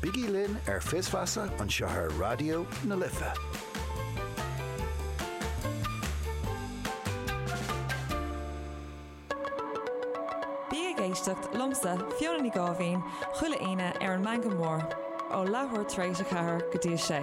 Bígí linn ar Fios Feasa anseo ar Raidió na Life. Bí ag éisteacht liomsa, Fiona Ní Gháibhín, chuile Aoine ar an Meangadh Mór, ó leathuair tar éis a ceathair go dtí a sé.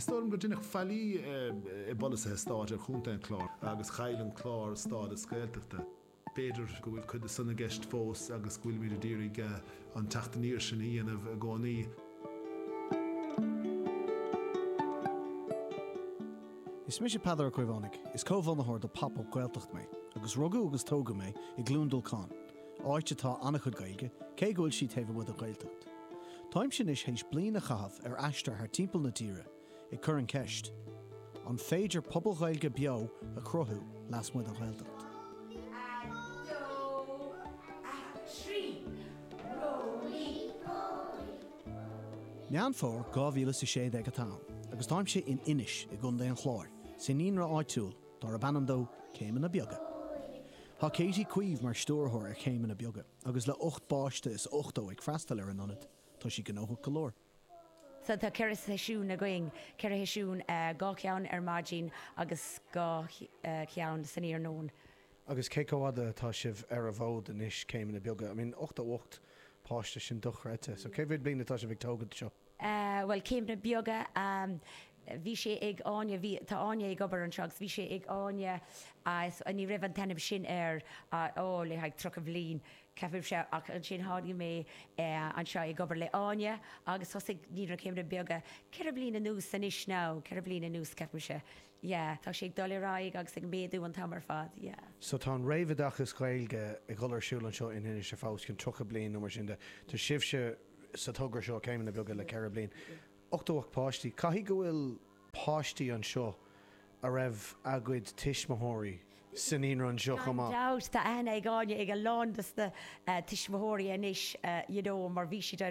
Is dóigh liom gur deineadh faillí i bpolasaithe stáit ar Chontae an Chláir agus chaill an Clár stádas Gaeltachta. B'fhéidir go bhfuil cuid de san i gceist fós agus go bhfuilimid ag d'iarraidh an teacht aniar sin a dhéanamh i gcónaí. Is mise Peadar Ó Caomhánaigh, is comhbhunaitheoir de Pop Up Gaeltacht mé, agus rugadh agus tógadh mé i gCluain Dolcáin, áit atá an-chuid Gaeilge, cé go bhfuil sí taobh amuigh den Ghaeltacht. Táimse anois théis bliain a chaitheamh ar aistear thar timpeall na tíre, ag cur an cheist, an féidir pobal Ghaeilge beo a chruthú lasmuigh den Ghaeltacht? Meán Fómhair 2016 atá ann agus táimse in Inis i gContae an Chláir, sa naíonra áitiúil, darb ainm dó Céimeanna Beaga. Tá Katie Uí Chaoimh mar stiúrthóir ar Chéimeanna Beaga agus le 8 bpáiste is 80 ag freastal ar an ionad, tá sí gnóthach go leor. Sea, tá ceithre sheisiún againn, ceithre sheisiún, dhá cheann ar maidin agus dhá cheann san iarnóin. Agus cé chomh fhada atá sibh ar an bhfód anois, Céimeanna Beaga? I mean 88 páiste, sin dochreidte. So cé mhéad bliain atá sibh ag tógaint seo? Sea, bhuel, céimeanna beaga. Bhí sé ag Áine, bhí, tá Áine ag obair anseo agus bhí sé ag Áine, ní raibh an t-ainm sin air, ó, le haghaidh tríocha bhliain, ceapaim, sea. Ach ansin tháinig mé anseo ag obair le hÁine agus thosaigh, ní raibh céimeanna beaga, ceithre bliana anuas anois now, ceithre bliana anuas ceapaimse. Yeah, tá sé ag dul ar aghaidh agus ag méadú an t-am ar fad, yeah. So tá an réamhoideachas Gaeilge ag dul ar siúl anseo in Inis ar feadh os cionn tríocha bliain nó mar sin de. Tá sibhse. sa togra seo, céimeanna beaga le 4 bliain, 88 páistí. Caithfidh go bhfuil páistí anseo a raibh a gcuid tuismitheoirí sa naíonra anseo chomh maith. Gan dabht, tá aithne ag Áine ar a lán dos na tuismitheoirí anois, you know, mar bhí siad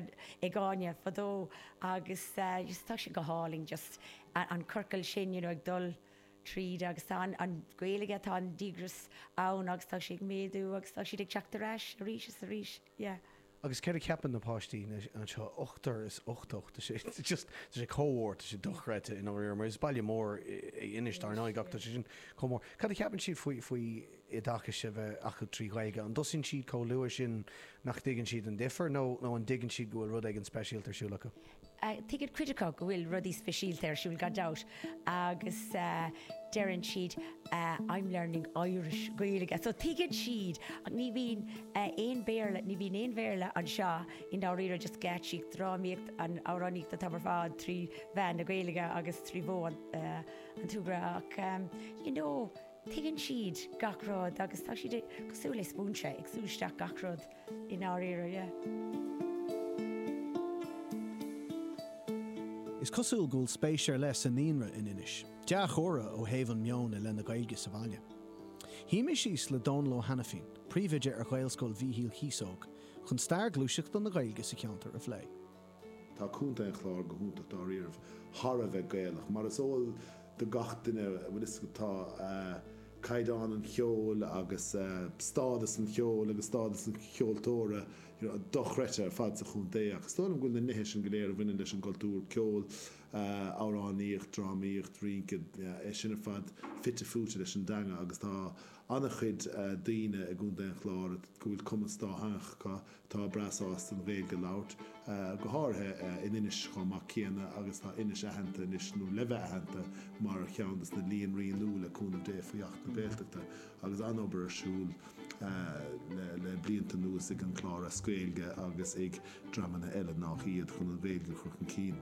ag Áine fadó agus just tá sé go hálainn just an ciorcal sin, you know, ag dul tríd agus tá an Ghaeilge, tá an díograis ann agus tá sí ag méadú agus tá siad ag teacht ar ais arís is arís, yeah. Agus céard a cheapann na páistí anseo? Ochtar is ochtó. Tá sé just, tá sé chomh mór, tá sé dochreidte i ndáiríre, mar is baile mór é Inis, dar ndóigh, ach tá sé sin chomh mór. Cad a cheapann siad faoi, faoi oideachas a bheith acu trí Ghaeilge? An dtosaíonn siad chomh luath sin nach dtuigeann siad an difear, nó, nó an dtuigeann siad go bhfuil rud éigin speisialta ar siúl acu? Tuigeann cuid acu go bhfuil rudaí speisialta ar siúl, gan dabht, agus deireann siad I'm learning Irish, Gaeilge. So tuigeann siad, ní bhíonn aon Béarla, ní bhíonn aon Bhéarla anseo i ndáiríre, just geáitsíocht, drámaíocht, amhránaíocht atá ar fad trí mheán na Gaeilge agus trí mhodh an tsúgartha ach you know tuigeann siad gach rud agus tá siad cosúil le spúinse, ag sú isteach gach rud. i ndáiríre. Is cosúil go bhfuil spéis ar leith sa naíonra in Inis. Dea-chomhartha ó thaobh an meon i leith na Gaeilge sa bhaile. Shuigh mé síos le Dónal Ó hAinifín, príomhoide ar Ghaelscoil Mhíchíl Chíosóg, chun stair ghluaiseachta na Gaeilge sa cheantar a phlé. Tá Contae an Chláir go hiontach dáiríribh, thar a bheith Gaelach, mar is eol do gach duine, bhuel, tá caighdeán an cheoil agus stádas an cheoil agus stádas an cheoltóra you know dochreidte ar fad sa chontae ach is dóigh liom go bhfuil na nithe sin go léir a bhaineann leis an gcultúr, ceol, amhránaíocht, drámaíocht, rínce, é sin ar fad fite fuaite leis an dteanga agus tá ana-chuid daoine i gContae an Chláir go bhfuil cumas dátheangach acu, atá breá sásta an Ghaeilge a labhairt, go háirithe in Inis chomh maith céanna agus tá Inis aitheanta anois, nó le bheith aitheanta, mar cheann de na líonraí nua le cúnamh Dé faoi Acht na Gaeltachta agus an-obair ar siúl le blianta anuas ag An Clár as Gaeilge agus ag dreamanna eile nách iad chun an Ghaeilge a chur chun cinn.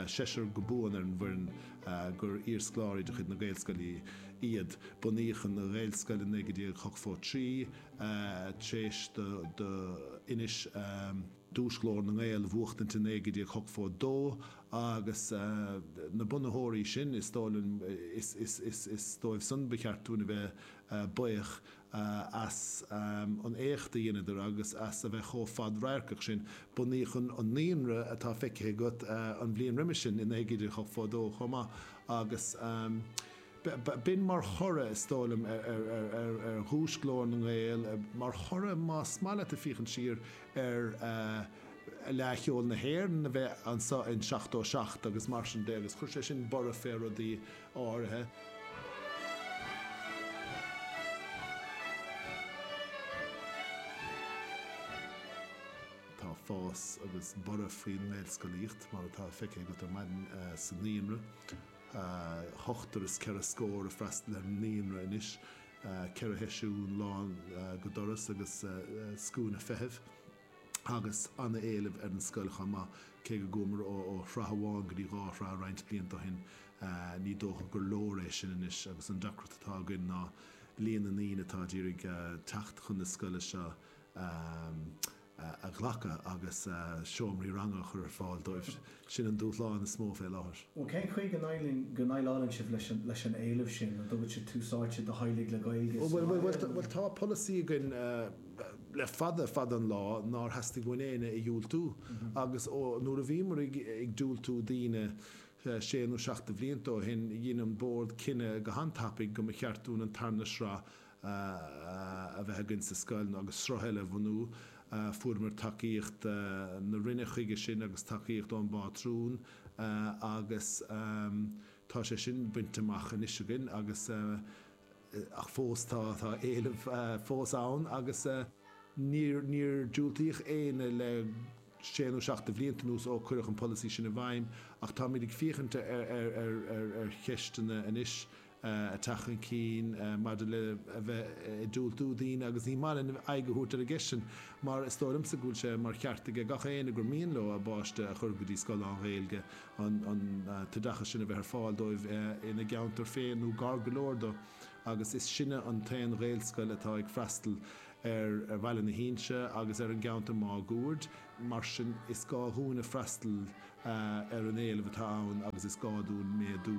Seisear go buan ar an bhfoireann gur iarscoláirí de chuid na Gaelscoile iad. Bunaíodh an Ghaelscoil i 1983. tar éis do Inis duais Ghlór na nGael a bhuachtaint i 1982 agus na bunaitheoirí sin, is dóigh liom, is dóibh san ba cheart dúinn a bheith buíoch as an éacht a dheineadar agus as a bheith chomh fad-radharcach sin. Bunaíodh an naíonra atá feicthe agat an bhliain roimis sin, i 1982 chomh maith, agus. B'in mar thoradh, is dóigh liom, ar dhuais Ghlór na nGael, mar thoradh, más maith leat ag féachaint siar, ar Fhleadh Cheoil na hÉireann a bheith anseo in 77 agus mar sin de agus chuir sé sin borradh fé rudaí áirithe. Tá fás agus borradh faoin nGaelscolaíocht, mar atá feicthe agat ar maidin sa Naíonra. ochtar is ceithre scór ag freastal ar an naíonra anois, ceithre sheisiún lán go doras agus scuaine feithimh, agus an-éileamh ar an scoil chomh maith, cé go gcuamair ó shraith amháin go dtí dhá shraith roinnt blianta ó shin, ní dócha gur leor é sin anois agus an deacracht atá againn ná líon na ndaoine atá ag iarraidh teacht chun na scoile seo a a ghlacadh agus seomraí ranga a chur ar fáil dóibh. Sin an dúshlán is mó fé láthair. Bhuel, cén chaoi go ndéileálann sibh leis an éileamh sin? An dtugann sibh tús áite do theaghlaigh le Gaeilge sa bhaile nó? Bhuel, tá polasaí againn le fada, fada an lá nár theastaigh uainn éinne a dhiúltú agus nuair a bhíomar ag diúltú daoine sé nó seacht de bhlianta ó shin, dhein an Bord cinneadh go han-tapaidh go mba cheart dúinn an tarna sraith a bheith againn sa scoil nó agus sruth eile a bhunú. Fuaireamar tacaíocht na Roinne chuige sin agus tacaíocht ón bPátrún agus tá sé sin bainte amach anois againn agus ach fós tá éileamh fós ann agus níor níor diúltaíodh éinne le sé nó seacht de bhlianta anuas ó cuireadh an polasaí sin i bhfeidhm ach táimid ag féachaint ar ar ar ar cheisteanna anois. ag teacht chun cinn maidir le a bheith ag diúltú daoine agus ní maith linn aghaidh a thabhairt ar an gceist sin mar is dóigh liomsa go bhfuil sé mar cheart aige gach éinne gur mian leo a bpáiste a chur go dtí scoil lán-Ghaeilge an t-oideachas sin a bheith ar fáil dóibh ina gceantar féin nó gar go leor dó agus is sinne an t-aon Ghaelscoil atá ag freastal ar Bhaile na hInse agus ar an gceantar máguaird mar sin is gá dhúinne freastal ar an éileamh atá ann agus is gá dúinn méadú.